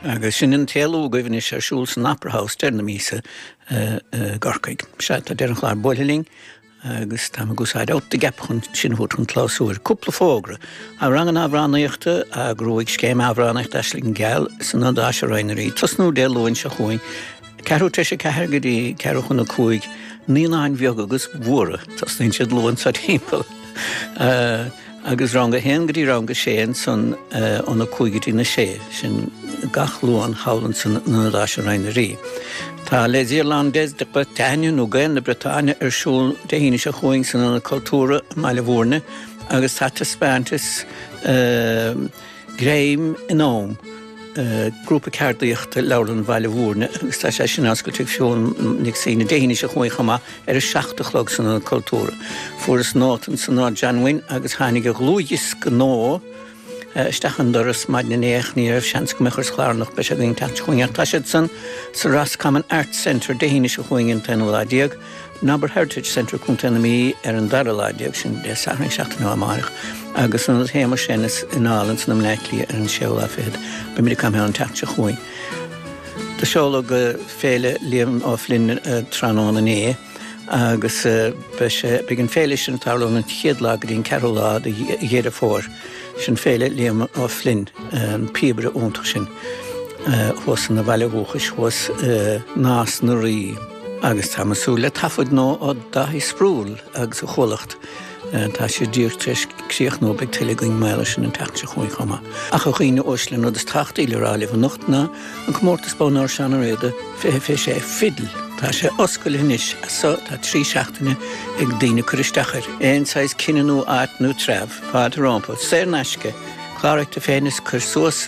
Agus sin an t-éalú agaibh anois ar siúl san Opera House deireadh na míosa i gCorcaigh. Sea, tá deireadh an chláir buailthe linn agus táimid ag úsáid out the gap chun sin a thabhairt chun clabhsúir. Cúpla fógra, tá ranganna amhránaíochta á n-eagrú ag Scéim Amhránaíochta Aisling Gheal san Ionad Áise Réidh na nDoirí, tosnú Dé Luain seo chugainn, ceathrú tar éis 4 go dtí ceathrú chun 5, naíonáin bheaga agus mhóra, tosnaíonn siad luath anso timpeall. agus rang 1 go dtí rang 6 ansan ó na 5 go dtí na 6 sin gach luan chugainn san Ionad Áise Réidh na nDoirí. Tá Les Irlandais de Bretagne nó Gaeil na Briotáine ar siúl Dé hAoine seo chugainn san Ionad Cultúrtha i mBaile Bhuirne agus tá taispeántas uh, Greim in Am grúpa ceardaíochta Leabharlann Bhaile Mhúirne agus tá sé sin á oscailt ag Síne Nic Suibhne Dé hAoine seo chugainn chomh maith ar a seacht a chlog san Ionad Cultúrtha. Fuaireas nóta ansan ó Téada, an mbuíon agus tháinig a dhlúthdhiosca nua isteach an doras maidin inné ach ní raibh seans agam é a chur sa chlár ach beidh sé againn an tseachtain seo chugainn ach tá siad san sa Roscommon Arts Centre Dé hAoine seo chugainn an t-aonú lá déag Nobber Heritage Centre Co. na Mí ar an dara lá déag sin, Dé Sathairn an seachtain seo amárach, agus an Séamus Ennis i Naul anso i mBleá Cliath ar an 6ú lá fichead. Beimid ag caint an tseachtain seo chugainn. Do seoladh Féile Liam Ó Floinn tráthnóna inné agus beidh sé, beidh an féile sin ag tarlú ón an chéad lá go dtí an ceathrú lá de Dheireadh Fómhair. Sin Féile Liam Ó Floinn, an píobaire iontach sin thuas ina bhaile dhúchais, thuas i Nás na Rí. Agus tá mé ag súil le taifead nua ó Dáithí Sproule agus a chomhlacht, tá sé díreach tar éis a chríochnú beidh tuilleadh againn maidir leis sin an tseachtain seo chugainn chomh maith. Ach a dhaoine uaisle an rud is tábhachtaí le rá libh anocht ná an comórtas Bonn Óir Seán Ó Riada 2026 fidil. Tá sé oscailte anois agus tá trí seachtaine ag daoine cur isteach air. Aon saghas cine nó áit nó treabh, fáilte rompu, saor in aisce, cláraigh tú féin is cuir suas.